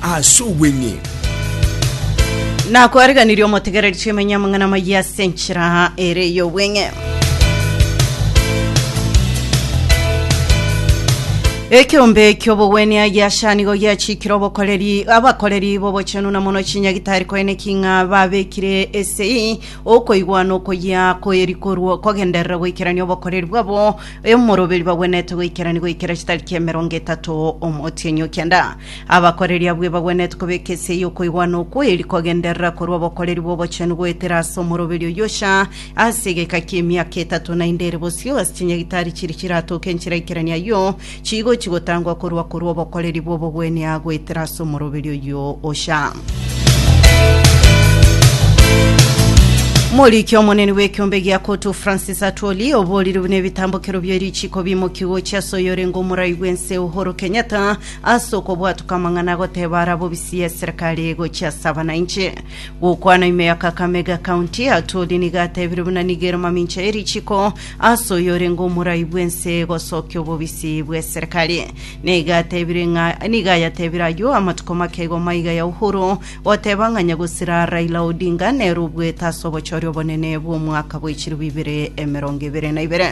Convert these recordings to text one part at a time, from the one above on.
Ase obweng'ee. Nakwariganirie omotegereri chimenye amang'ana maye ase enchera ere y'obweng'e. Ekeombe ki'obogwenia giacha nigo giachikire obokoreri abakoreri b'obochenu na mono chinyagitari koine king'a babekire esei okoigwa na okoyia koeri korwa kogenderera goikerania obokoreri bwabo emoroberi bagwenete goikerania goikera chitariki emerongo etato omotienyi o kianda Abakoreri abwo ebagwenerete kobeka esia y'okoigwana okwo eri kogenderera korwa obokoreri bw'obochenu goetera ase omoroberi oyio cha ase egeka ki'emiaka etato, naende ere bosio ase chinyagitari chiria chiratoke enchera ikerania ayio chigochi gotangwa korwa korwa obokoreri bw'obogwenia goetera ase omoroberi oyio ocha. Moriki omonene bw'ekiombe gia Kotu Francis Atwoli oborire buna ebitambokero bie richiko bimoki gochia ase oyorenge omorai bw'ense Uhuru Kenyatta Ase okobwatuka amang'ana agoteba arabwo bisiya eserekari gochia ase abanainche. Gokwana ime ya Kakamega County, Atwoli nigo atebire buna nigo ere mamincha ye richiko ase oyo orenge omorai bw'ense gosokia obobisi bw'eserekari. Nigo atebire ng'a nigo ayatebire ayio amatuko make igo maiga ya Uhuru Goteba ng'a nyagusira Raila Odinga nere obuete ase obochori obonene bw'omwaka bwe chilifu ibere emerongo ebere na ibere.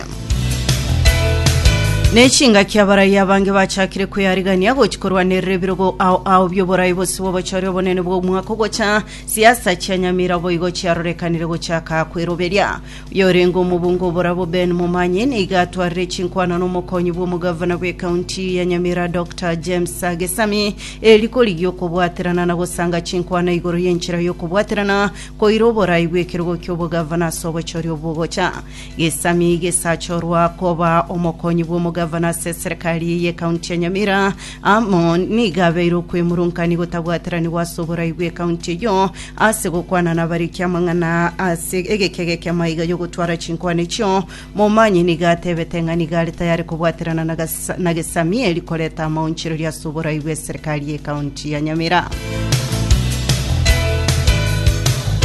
Ne chingaki abarai abange bachakire kwearigania gochi korwanerera ebirogo ao ao bioborai bose bw'obochori obonene bw'omwaka ogocha. Siasa chia Nyamira boigo chiarorekanire gochaka kweroberia. Yorenge omobunga oborabo Ben Momanyi nigo atwarire chinkwana nomokonyi bw'omogavana bw'ekaunti ya Nyamira Doctor James Gesami eri korigia okobwaterana na gosanga chinkwana igoro y'enchera y'okobwaterana koira oborai bw'ekerogo ki'obogavana ase obochori obwogocha Gesami gesachorwa koba omokonyi bw'omogavana ase eserekari y'ekaunti ya Nyamira Amo nigo abeire okwemurunkanigwa otabwateranigwa ase oborai bw'ekaunti eyio, ase gokwana nabariki amang'ana ase egekega eki'amaiga y'ogotwara chinkwana echio. Momanyi nigo atebete ng'a nigo are tayare kobwaterana na Gasa- na Gesamieri koreta amaonchereria ase oborai bw'eserikari y'ekaunti ya Nyamira.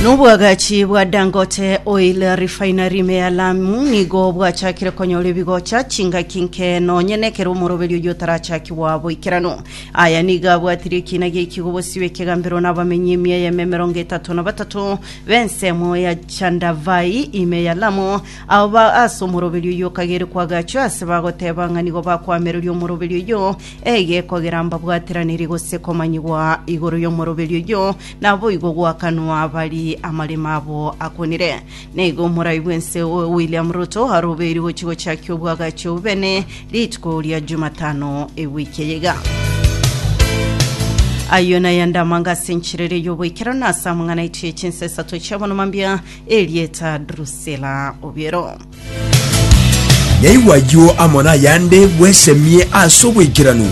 Nobwagachi bwa Dangote Oil Refinery me ya Lamu nigo bwachakire konyora ebigocha chingaki nke nonye nekero omoroberio oyio otarachakigwa boikeranu. Aya nigo abwatirie ekiina gi'ekigo bosio ekegambero na abamenyi emia y'eme emerongo etato na batato b'ensemo ya Chandavai ime ya Lamu, abo ba ase omoroberio oyio okagere kwagachwa ase bagoteba ng'a nigo bakwamereria omoroberio oyio Eye kogera mbabwateraneri gose komanyigwa igoro y'omoroberio oyio, naboigo goakanwa bari amaremo abo akonire. Naigo moraigwe nse oyo William Ruto arobeirwe gochia gochakia obwagachi obobene rituko ria Jumatano ewiki eye iga. Ayio nayande amanga ase enchiriri y'oboikeranu ase amang'ana aitwe y'echinsa esato chi'abonoma mbia, erieta Drusilla Obiero. Yaigwa ayio amo nayande bwesemie ase obwaikeranu.